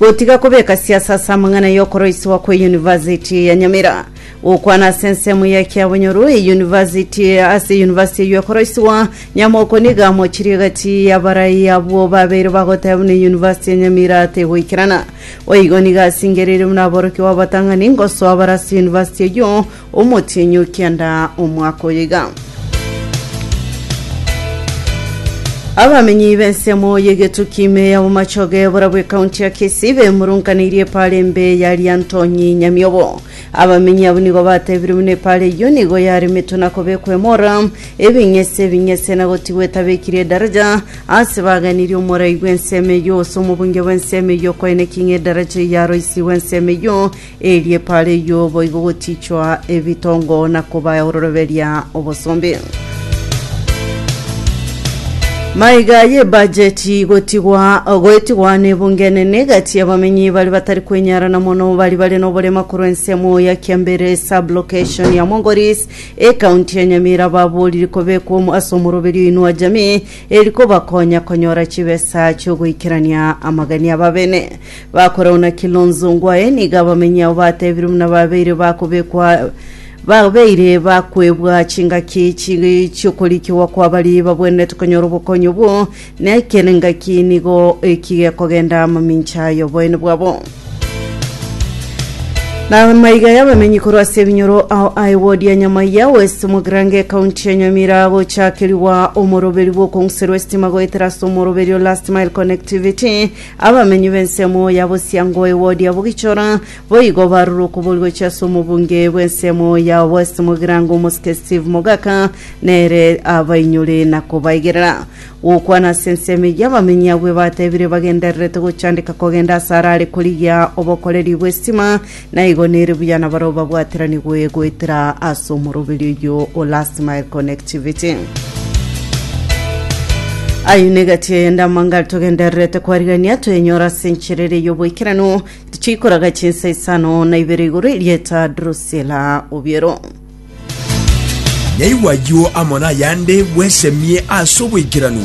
Gotiga kobeka siasa ase amang'ana y'okoroisiwa kwe University ya Nyamira. Gokwana ase ensemo ya ekiabonyoru e University ase University eyio ekoroisiwa, Nyamoko nigo amochirie gati y'abarai abwo babeire bagoteba buna University ya Nyamira tegoikerana. Boigo nigo asingereirie buna aborokigwa abatang'ani ngosoa bare ase University eyio Omotienyi o kianda omwaka oyo iga. Abamenyi b'ensemo y'egetuki ime ya Bomachoge borabwo ekaunti ya Kisii bemurunkaneirie epara embe ya Riantonyi Nyamiobo. Abamenyi abwo nigo batebire buna epara eyio nigo yaremetwe na kobekwa emora, ebing'ese ebing'ese na gotigwa etabekire edaraja ase baganirie omorai bw'ensemo eyio gose omobunge bw'ensemo eyio koeneki ng'a edaraja eyio yaroisigwe ensemo eyio Erie paara eyio boigo gotiichwa ebitongo na koba ororoberia obosombe. Maiga y'ebajeti gotigwa goetigwa n'ebunge enene gati y'abamenyi bari batari kwenyarana mono bari bare n'oborema korwa ensemo ya Kiambere sub-location ya Mongoris ekaunti ya Nyamira baboriri kobekwa omo ase omoroberio Inua Jamii eri kobakonya konyora chibesa chiogoikerania amagania babene Bakorauna Kilonzo Ongwae nigo abamenyi ao batebirwe buna babeire bakobekwa babeire bakwebwa chingaki chi chi'okorikigwa kwa baria babwenerete konyora obokonyi obwo, na ekero engaki nigo eki gekogenda amamincha y'oboene bwabo. Na amaiga y'abamenyi korwa ase ebinyoro ao a ewodi ya Nyamaiya West Mogrange ekaunti ya Nyamira agochakerigwa omoroberi bw'okong'userwa esitima goetera ase omoroberi o Last Mile Connectivity Abamenyi b'ensemo ya bosiango ewodi ya Bugichora boigo barure okoboria gochia ase omobunge bw'ensemo ya West Mugirango omosike Steve Mogaka nere abainyore na kobaigerera. Gokwana ase ensemo eyio abamenyi abwo ebatebire bagendererete gochandeka kogenda ase arare korigia obokoreri bw'estima Na igo nere buya nabarabwo babwatiranigwe goetera ase omoroberio oyio o last mile connectivity. Aye negati eyende amangari togendererete kwarigania twenyora ase enchera ere y'oboikeranu tichikoraga chinsa isano na ibere igoro erieta Drusilla Obiero. Naigwa ayio amo nayande bwesemie ase oboikeranu.